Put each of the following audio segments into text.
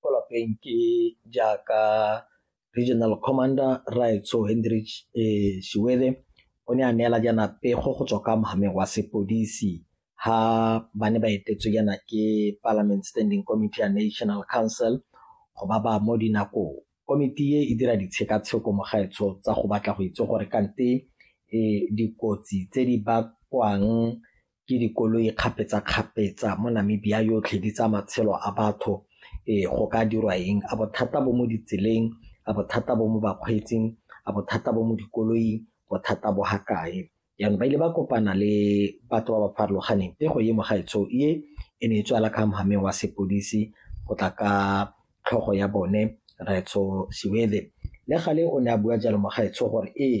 kwa lapeng ke jaaka regional commander raetso hendrich um shiwele o ne a neela jaana pego go tswa ka mogameng wa sepodisi ha ba ne ba etetswe jaana ke parliament standing committee ya national council go ba ba mo dinakong komiti e e dira ditshekatsheko mogaetsho tsa go batla go itse gore kante um dikotsi tse di bakwang ke dikoloi kgapetsa-kgapetsa mo Namibia yotlhe di tsa matshelo a batho ee go ka dirwa eng a bothata bo mo ditseleng a bothata bo mo bakgweetsing a bothata bo mo dikoloing bothata bo ga kae jaanong ba ile ba kopana le batho ba ba farologaneng e go ye mo gaetsho e e ne e tswala ka mogameng wa sepodisi go tla ka tlhogo ya bone Retso Siwele le gale o ne a bua jalo mo gaetsho gore ee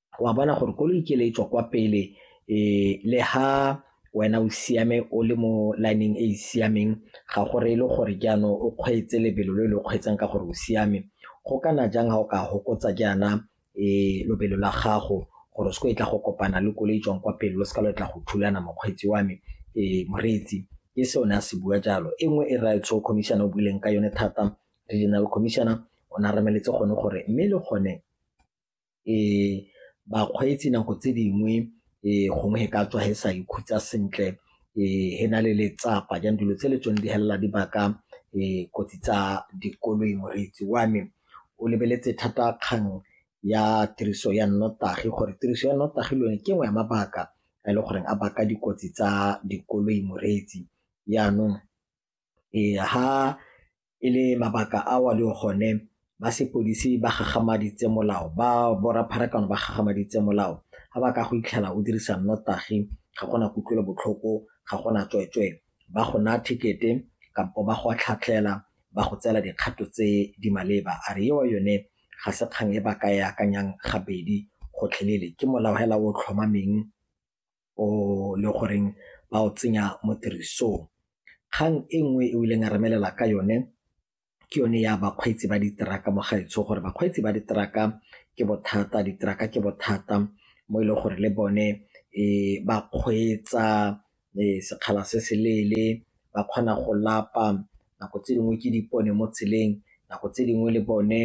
wa bona gore koloi ke le e tswa kwa pele um le ha wena o siame o le mo lineng e e siameng ga gore e le gore jaanong o kgweetse lebelo le le kgweetsang ka gore o siame go kana jang ga o ka gokotsa jaana um lobelo la gago gore o se ko e tla go kopana le koloi e tswang kwa pele lo se ka lo tla go thulana mokgweetsi wa me um moreetsi ke se o ne a se bua jalo e nngwe e raya tsho commissioner o buileng ka yone thata regional commissioner o ne a remeletse gone gore mme le gone bakgweetsi nako tse dingwe gongwe e ka tswa e sa ikhutsa sentle e na le letsapa jang dilo tse le tsone di helela di baka kotsi tsa dikoloi. Moreetsi wa me o lebeletse thata kgang ya tiriso ya nnotagi gore tiriso ya nnotagi le yone ke nngwe ya mabaka a e le goreng a baka dikotsi tsa dikoloi moreetsi jaanong. Ee, ha e le mabaka ao a leng gone ba sepodisi ba gagamaditse molao ba borra pharakano ba gagamaditse molao ga ba ka go itlhela o dirisa nnotagi ga gona kutlwelobotlhoko ga gona tsweetswee ba go naya ticket-e kampo ba go tlhatlhela ba go tseela dikgato tse di maleba a re ewa yone ga se kgang e ba ka e akanyang gabedi gotlhelele ke molao hela o tlhomameng o le goreng ba o tsenya mo tirisong kgang e nngwe e o ileng a remelela ka yone ke yone ya bakgweetsi ba diteraka mo gaetsho gore bakgweetsi ba diteraka ke bothata diteraka ke bothata mo e leng gore le bone um ba kgweetsa um sekgala se se leele ba kgona go lapa nako tse dingwe ke dipone mo tseleng nako tse dingwe le bone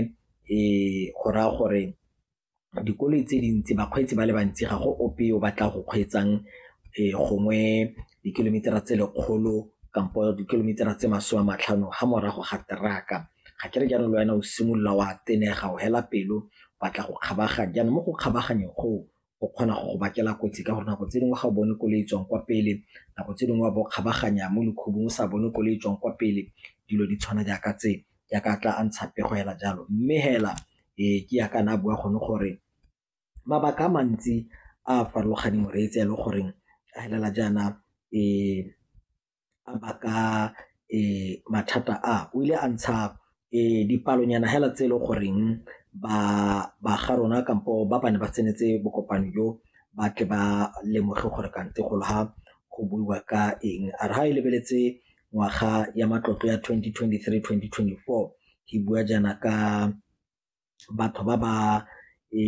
um go raya gore dikoloi tse dintsi bakgweetsi ba le bantsi ga go ope o batla go kgweetsang gongwe di-kilometer-a tse lekgolo kampo di-kilometer-a tse masome a matlhano ga morago ga teraka ga ke re jaanong le wena o simolola wa tenega o hela pelo batla go kgabaganya jaanong mo go kgabaganyeng go o kgona go go bakela kotsi ka gore nako tse dingwe ga o bone koloi e tswang kwa pele nako tse dingwe wa bo kgabaganya mo lekhubung o sa bone koloi e tswang kwa pele dilo di tshwana jaaka tse. jaaka a tla a ntsha pego hela jalo mme hela e ke ya ka na bua gone gore mabaka a mantsi a a farologaneng reetse ya le goreng a helela jaana e a baka e mathata a o ile a ntsha e dipalonyana hela tse e le goreng ba ba ga rona kampo ba bane ba tsenetse bokopano jo ba tle ba lemoge gore kante golo ha go buiwa ka eng a re ga e lebeletse ngwaga ya matlotlo ya 2023-2024 ke bua jaana ka batho ba ba e,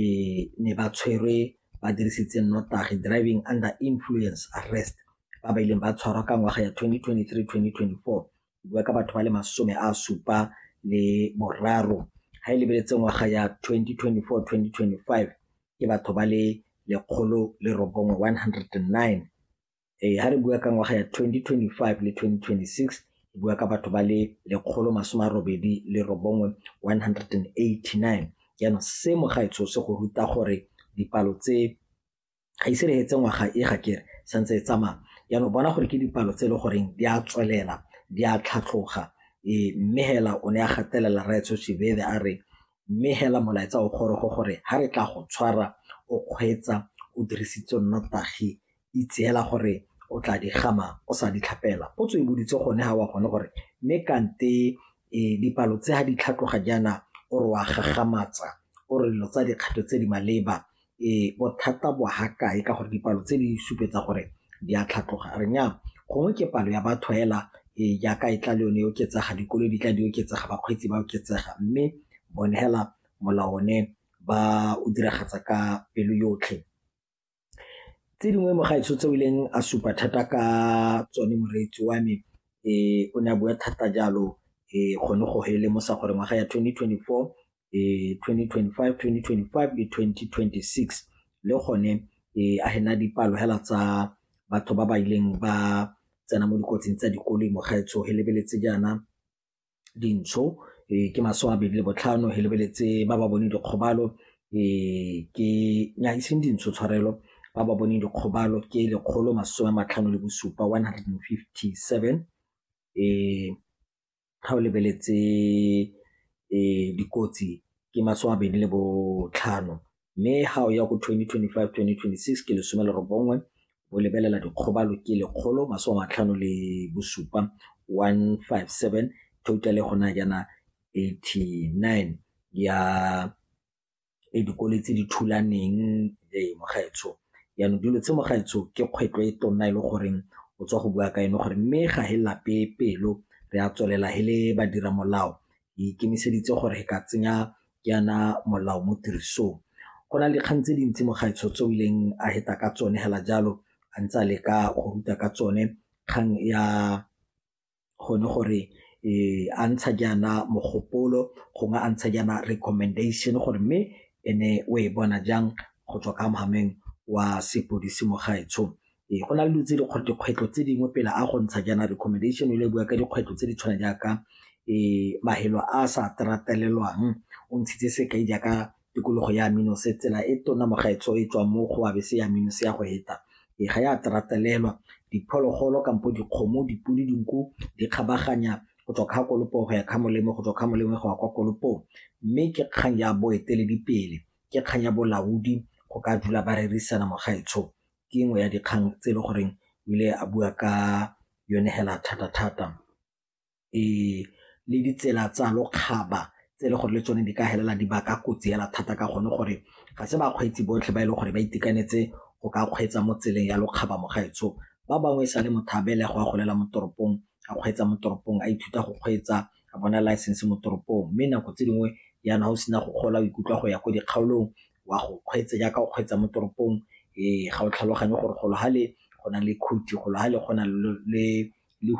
ne ba tshwerwe ba dirisitse nnotagi driving under influence arrest ba ba ileng ba tshwarwa ka ngwaga ya 2023-2024 bua ka batho ba le masome a supa le boraro ga e lebeletse ngwaga ya 2024-2025 ke batho ba le lekgolo le robongwe 109 ee ga re bua ka ngwaga ya 2025 le 2026 re bua ka batho ba le lekgolo masome a robedi le robongwe 189 jaanong se mogaetsho se go ruta gore dipalo tse ga ise re etse ngwaga e ga kere santse e tsamaya jaanong bona gore ke dipalo tse e le goreng di a tswelela di a tlhatlhoga ee mme hela o ne a gatelela raetsho shebebe a re mme hela molaetsa o gorogo gore ga re tla go tshwara o kgweetsa o dirisitse nnotagi itseela gore o tla di gama o sa di tlhapela potso e boditse gone ga wa gone gore mme kante e, dipalo tse ga di tlhatloga jaana o re wa gagamatsa o re dilo tsa dikgato tse di maleba e bothata bo ha kae ka gore dipalo tse di supetsa gore di a tlhatloga re nya gongwe ke palo ya batho hela e jaaka e tla le yone e oketsega dikolo di tla di oketsega bakgweetsi ba oketsega mme bone hela molao one ba o diragatsa ka pelo yotlhe tse dingwe mo gaetsho tse o ileng a supa thata ka tsone moreetsi wa me um o ne a bua thata jalo um gone go hele mo sa gore ngwaga ya 2024 um 2025 2025 le 2026 le gone um a hena dipalo hela tsa batho ba ba ileng ba tsena mo dikotsing tsa dikoloi mo gaetsho he lebeletse jaana dintsho ke masome a mabedi le botlhano, re lebeletse ba ba boneng dikgobalo ke, nnyaa e seng dintsho tshwarelo, ba ba boneng dikgobalo ke lekgolo masome a matlhano le bosupa, one hundred and fifty seven. Ga o lebeletse dikotsi ke masome a mabedi le botlhano, mme ga o ya go 2025 2026 ke lesome le robongwe o lebelela dikgobalo ke lekgolo masome matlhano le bosupa 157 total go na jaana 89 ya e dikole tse di thulaneng le mogaetsho yaanong dilo tse mogaetsho ke kgwetlo e tonna e le goreng o tswa go bua ka eno gore mme ga he lape pelo re a tswelela he le badira molao e ikemiseditse gore ka tsenya yana molao mo tirisong go na le dikgang tse dintsi mo gaetsho tse o ileng a heta ka tsone hela jalo a ntse a leka go ruta ka tsone kgang ya gone gore e a ntsha jaana mogopolo gongwe a ntsha jaana recommendation gore mme ene o e bona jang go tswa ka mogameng wa sepodisi mo gaetsho Ee, go na le dilo tse dikgwetlho tse dingwe pele a go ntsha jaana recommendation e le bua ka dikgwetlho tse di tshwana jaaka um mafelo a sa o ntshitse sekai jaaka tikologo ya tsela e tona mo gaetsho e tswang mo go se ya ya go heta e ga ya diphologolo kampo dikgomo, dipodi, dinku di kgabaganya go tswa kha kolopo go ya kha molemo go tswa kha molemo go ya kwa kolopong mme ke kgang ya boeteledipele ke kgang ya bolaodi go ka dula ba rerisana mo gaetsho ke nngwe ya dikgang tse e le goreng o ile a bua ka yone hela thata-thata le ditsela tsa lokgaba tse e le gore le tsone di ka helela di baka kotsi hela thata ka gone gore ga se bakgweetsi botlhe ba e leng gore ba itekanetse go ka kgweetsa mo tseleng ya lokgaba mo gaetsho ba bangwe e sa le motho a belegwa a golela mo toropong a kgweetsa mo toropong a ithuta go kgweetsa a bona license mo toropong mme nako tse dingwe yana o sena go gola o ikutlwa go ya ko dikgaolong wa go kgweetse jaaka o kgweetsa mo toropong ga o tlhaloganye gore golo gale go na le khuthi golo gale go na le